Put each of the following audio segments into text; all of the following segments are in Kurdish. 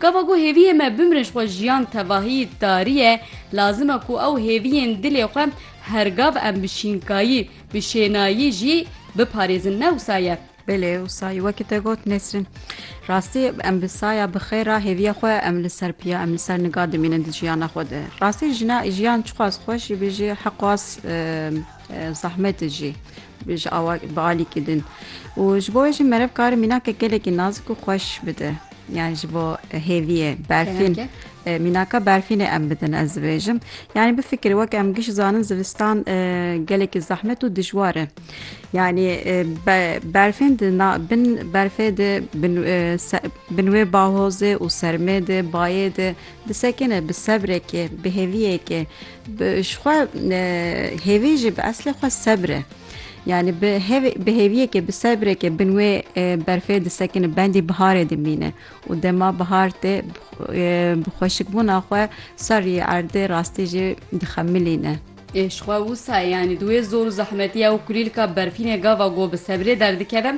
Gava ku hêviyê me bimre ji xwe jiyan tevahî tarî ye, lazim e ku ew hêviyên dilê xwe her gav em bi şînkayî, bi şênayî jî biparêzin ne wisa ye. Belê wisa ye wekî te got Nesrîn. Rastî em bi saya bi xêr re hêviya xwe em li ser piya, em li ser nika dimînin di jiyana xwe de. Rastî jina jiyan çiqas xweş jî bê jî hiqas zahmet e jî. Ji awa bi alîkî din û ji bo wê jî merev kar e mînakek gelekî nazik û xweş bide. Yani ji bo hêviyê, berfîn, mînaka berfînê em bidin ez dibêjim. Yani bifikirî weke em giş zanin zivistan gelekî zehmet û dijwar e. Yani berfên di bin berfê di bin wê bahozê û sermê di bayê di disekine bi sebrekê, bi hêviyekê. Ji xwe hêvî jî bi eslê xwe sebr e. Yani bi hêvê bi hêviyekê bi sebrekê bin wê berfê disekine bendî biharê dimîne û dema bihar tê bi xweşikbûna xwe serrî erdê rastî jî dixemilîne. Ê ji xwe wisa ye yanî di wê zor û zehmetiya û kulîlka berfînê gava ku bi sebrê derdikeve.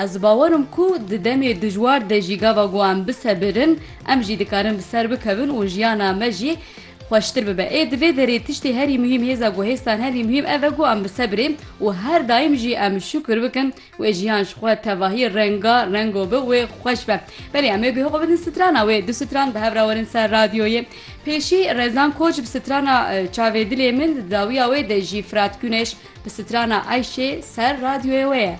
Ez di bawerim ku di demê dijwar de jî gava ku em bisebirin em jî dikarin bi ser bikevin û jiyana me jî Xweştir bibe. Ê di vê derê tiştê herî muhîm hêza ku hêztan herî muhîm ev e ku em bi sebrê û her daîm jî em şukir bikin wê jiyan ji xwe tevahî renga rengo bi wê xweş be. Belê em ê guhê xwe bidin strana wê. Du stran bi hev re werin ser radyoyê. Pêşî Rezan Koç bi strana Çavê dilê min di dawiya wê de jî Firat Guneş bi strana Eyşê ser radyoyê wê ye.